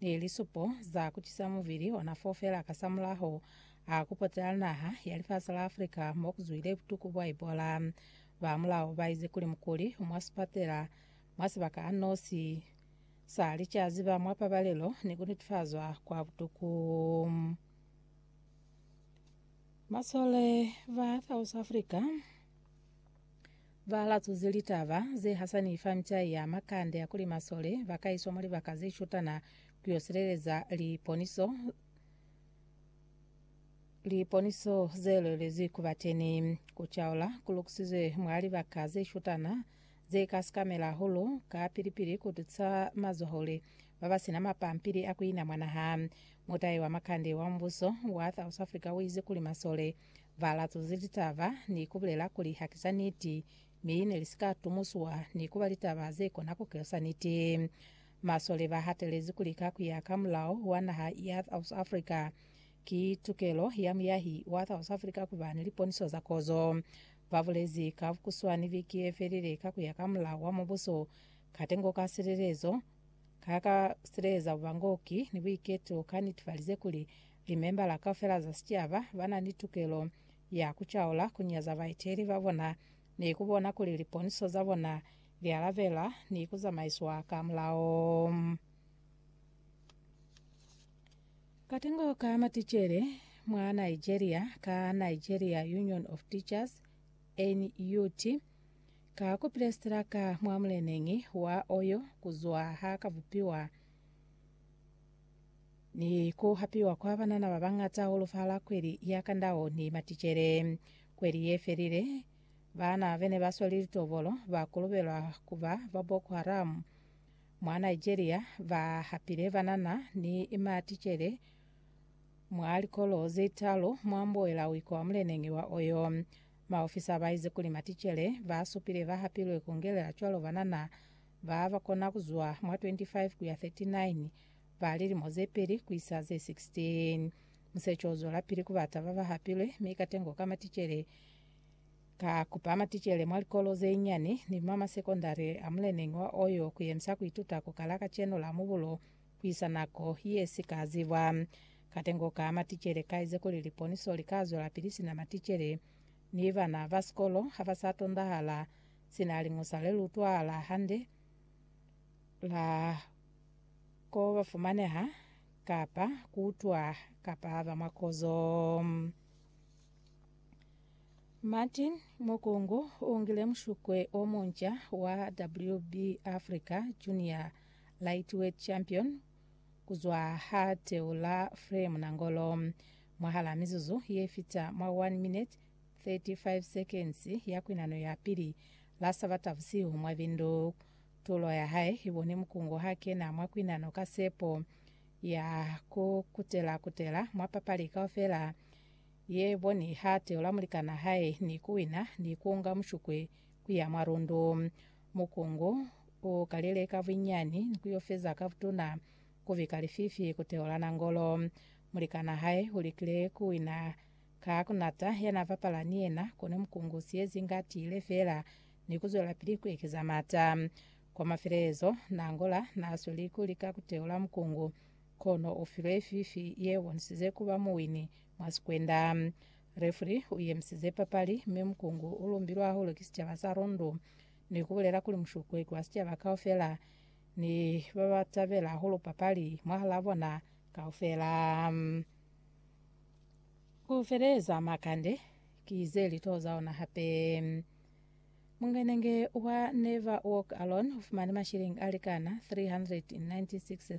ni lisupo za kucisa mubili ona fo fela kasamulaho a kupotela naha ya lifasi la Africa mo kuzwile butuku bwa Ebola. Ba mulao baize kuli mukuli mwa sipatela mwa sibaka a nosi sa li ca ziba mwa pabalelo ni kunetifazwa kwa butuku. Masole ba South Africa. Ba latuzi litaba ze hasani fa micai ya makande ya kuli masole ba ka iswa mwa libaka ze shutana ku yo sileleza liponiso liponiso ze lwelezi ku ba teni. Ku caula ku lukusizwe mwa libaka ze shutana ze ka sikamela hahulu kapili-pili ku tusa mazwahule ba ba si na mapampili a ku ina mwa naha. Mutai wa makande wa mubuso wa South Africa u ize kuli masole Ba latuzi litaba ni ku bulela kuli ha ki za niti, mi ne li si ka tumuswa ni ku ba litaba ze kona ku kelusa niti. Masole ba hatelezi kuli ka ku ya ka mulao wa naha ya South Africa, ki tukelo ya muyahi wa South Africa ku ba ni liponiso za kozo. Ba bulezi ka bukuswani viki ye felile ka ku ya ka mulao wa mubuso, katengo ka silelezo ka ka sileleza bubangoki ni buiketo ka nitfalize kuli Limembala kaufela za sicaba bana ni tukelo ya kucaula kunyaza baeteli babona ni kubona kuli liponiso zabona lialabela ni kuzamaiswa ka mulao. Katengo ka maticele mwa Nigeria ka Nigeria Union of Teachers, NUT, ka kupile sitilaka mwa muleneñi wa Oyo kuzwa ha ka bupiwa. ni ku hapiwa kwa banana ba bañata hahulu fahal'a kweli ya kandao ni maticele. Kweli ye felile, baana be ne ba sweli litobolo ba kolobelwa ku ba ba Boko Haram mwa Nigeria ba hapile banana ni maticele mwa likolo ze talu mwa mboela wiko wa muleneñi wa Oyo. Maofisa ba ize kuli maticele ba supile ba hapilwe ku ngelela cwalo banana Ba ba kona ku zwa mwa 25 ku ya 39, ba lilimo ze peli ku isa ze 16. Musecho u zwelapili ku ba taba ba hapilwe, mi katengo ka maticele ka kupa maticele mwa likolo ze nyani ni mwa masekondari a muleneñi wa Oyo ku yemisa ku ituta ku kala kacenu la mubulo ku isa nako ye si ka zibwa. Katengo ka maticele ka ize kuli liponiso li ka zwelapili sina maticele, mi bana ba sikolo ha ba sa tondahala. Sina liñusa le lutwa la hande la ko ba fumaneha kapa kutwa kapa ba mwa kozo. Martin Mukungu u ngile mushukwe o munca wa WB Africa Junior Lightweight Champion ku zwa ha teu la Frame Nangolo mwahala mizuzu ye fita mwa 1 minute 35 seconds ya kwinano ya pili la Sabata busihu mwa bindu. Tulo ya hae i boni Mukungu ha kena mwa kwinano ka sepo ya ku kutela-kutela mwa papali kaufela ye boni ha teula mulikana hae ni ku wina ni ku nga mushukwe ku ya mwa lundu. Mukungu u kalile ka buinyani ni ku yo feza ka butuna ku bika lififi ku teula nangolo. Mulikana hae u likile ku wina Ka ku nata ya na bapala ni yena, kono mukungu siyezi inge a tiile feela ni ku zwelapili ku ekeza mata. Kwa mafelelezo, Nangola na sweli ku lika ku teula mukungu, kono u filwe fifi ye bonisize ku ba muwini mwa sikwenda. Refri u yemisize papali, mi mukungu u lumbilwe hahulu ki sicaba sa Rundu ni ku bulela kuli mushukueki wa sicaba kaufela ni ba ba tabela hahulu papali mwahalaa bona kaufela. Ku feleza makande ki ze lito za ona hape. Mungenenge wa Never Walk Alone u fumani mashilingi a likana 396